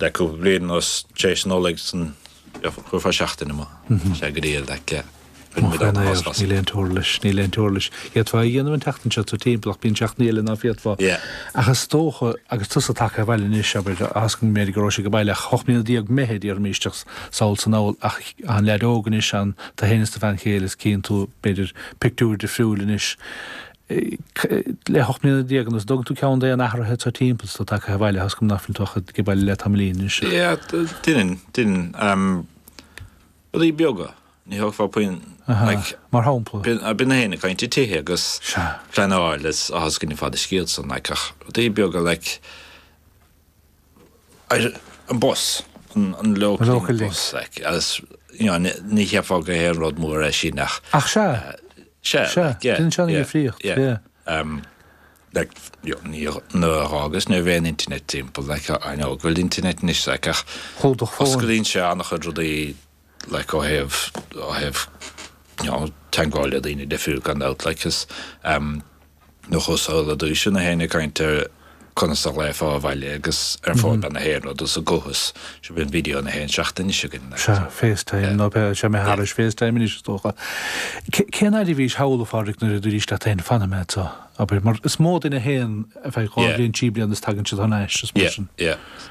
Le cúpla bliain anuas, tar éis an Nollaig, chuirfeá seachtain amach. Bhí sé go diail aici. Rinne muid ábhar as Níl aon t-uirlis, níl aon t-uirlis. D'fhéadfá é a dhéanamh an tseachtain seo, tú timpeall, ach bíonn seachtainí eile ná féadfá. Ach is dócha, agus tusa tagtha abhaile anois, abair, a Ascaill, an méid go rabhais ó bhaile, ocht mbliana déag Meitheamh, déarfaimís, isteach sa saol san Abhainn, ach an leaid óg anois, tú fhéin is do bhean chéile is cíonn tú, b'fhéidir pictiúir difriúil anois, le hocht mbliana déag anuas, an dtugann tú ceann d'aon athruithe atá timpeall, tusa tagtha abhaile, tá fhios agam nach bhfuil tú ach ag baile le tamaillín anois. Yeah, deinim, deinim. Rudaí beaga, ní thógfá puinn, like. Mar shampla? Bíonn éinne ag caint ar tithe agus pleanáil is tá fhios go ní fada an scéal san, like, ach rudaí beaga, like. ar an bus, an Local Link bus, like, agus you know ní cheapfá gur aon rud mór é sin ach. Ach sea, sea, sea, sin sin an difríocht, yeah, yeah. like, you know, ní nuair agus ní bhíodh an internet timpeall, like, I know, go bhfuil internet anois, like, ach. Chomh do chomh. Osclaíonn sé ana-chuid rudaí. like ó thaobh, ó thaobh, you know, teagmháil le daoine difriúil gan dabht, like is, ehm, nuair a chuas sall ar dtúis, gach éinne ag caint ar conas a ghlaofá abhaile agus ar phone, bhí gach aon rud is an costas. So bíonn video gach aon seachtain anois againn, like. Sea, FaceTime, nó b'fhéidir, sea, mé thairis FaceTime anois is dócha. Cé, cén fhaid a bhís thall, a Phádraig, nuair a dúraís leat féin fanfaidh mé anso, abair, mar is mó duine a théann, ar feadh dhá bhliain, trí bliain is tagann siad thar n-ais, is mar sin. Yeah, yeah.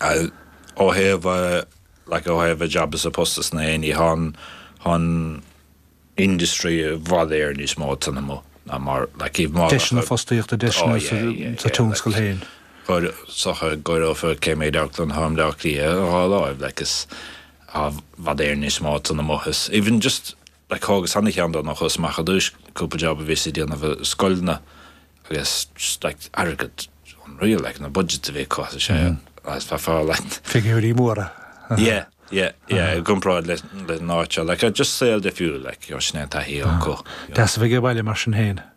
Ó thaobh a, like, ó thaobh a jab is a post is gach aon ní thá'n, thá'n industry i bhfad Éireann níos mó ag tarlú ná mar, like, thaobh mar. Deiseanna fostaíochta, deiseanna. Oh yeah, yeah, yeah. Sa tionscal féin. Tá's agat go bhfuil an méid i Londain, tharna mBleá Cliath, dhá láimh, like, is, i bhfad Éireann níos mó ag tarlú is, even just, Thógas ana-cheann de nuair a chuas amach ar dtús, cúpla jab a bhíos ag déanamh i scoileanna agus an t-airgead unreal, like, na budgets a bhí acu, bhí sé uafásach, like. Figiúirí móra. Yeah, yeah, yeah, i gcomparáid le an áit seo, like, just saol difriúil, like, you know, sin é an taithí acu. Deas a bheith ag baile mar sin féin.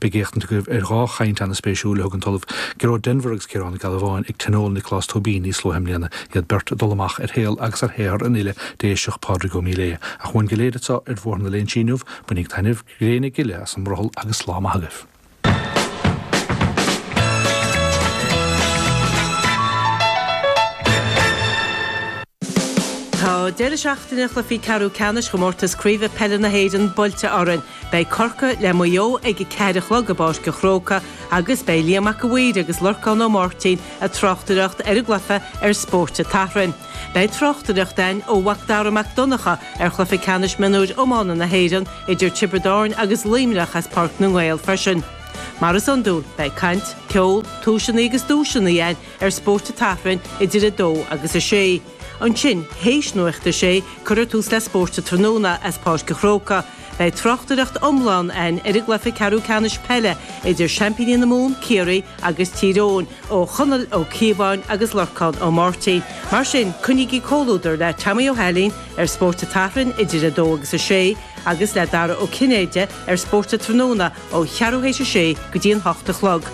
Beidh éachtaint againn ar dhá chaint ana-spéisiúil a thug an tOllamh Gearóid Denvir agus Ciarán Ó Gealbháin ag Tionól Nioclás Tóibín níos luaithe i mbliana, iad beirt ag cur amach ar shaol agus ar shaothar an fhile Déiseach, Pádraig Ó Míléadh. Ach uainn go léir anseo ar Bhóthar na Léinsí inniu, bainigí taitneamh, gréine gile as an mbrothall agus lá maith agaibh. Tá deireadh seachtaine chluichí ceathrú ceannais chomórtas craoibhe peile na hÉireann buailte linn. Beidh Corcaigh le Maigh Eo ag a ceathair a chlog i bPáirc an Chrócaigh agus beidh Liam Mac an Mhaoir agus Lorcán Ó Máirtín a tráchtaireacht ar an gcluiche ar Spórt a' tSathairn. Beidh tráchtaireacht a'ainn ó MhacDara Mac Donncha ar Chluiche Ceannais Mionúir Iomána na hÉireann idir Tiobraid Árainn agus Luimneach as Páirc na nGael freisin. Mar is iondúil, beidh caint, ceol, tomhaiseannaí agus duaiseannaí a'ainn ar Spórt a' tSathairn idir 2 agus 6. Ansin, théis Nuacht a 6, cuirfear tús le Spórt a' Tráthnóna as Páirc an Chrócaigh, Beidh tráchtaireacht iomlán ann ar an gcluiche ceathrú ceannais peile idir seaimpíní na Mumhan, Ciarraí, agus Tír Eoghain, ó Chonall Ó Cíobháin agus Lorcán Ó Máirtín. Mar sin, coinnígí comhluadar le Tommy Ó hAilín ar Spórt a' tSathairn idir 2 agus 6, agus le Dara Ó Cinnéide ar Spórt a' Tráthnóna ó cheathrú théis a sé go dtí an hocht a chlog.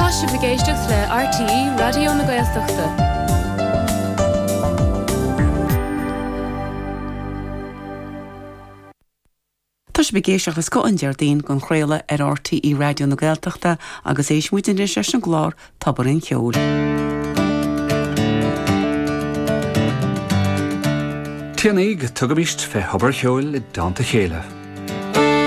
Tá sibh ag éisteacht le RTÉ Raidió na Gaeltachta. Tá sibh ag éisteacht le scoth an Déardaoin dhá chraoladh ar RTÉ Raidió na Gaeltachta agus éistfidh muid anois leis an gclár Tobar an Cheoil. Téanaigí, tugaimíst fé Thobar an Cheoil i dteannta a chéile.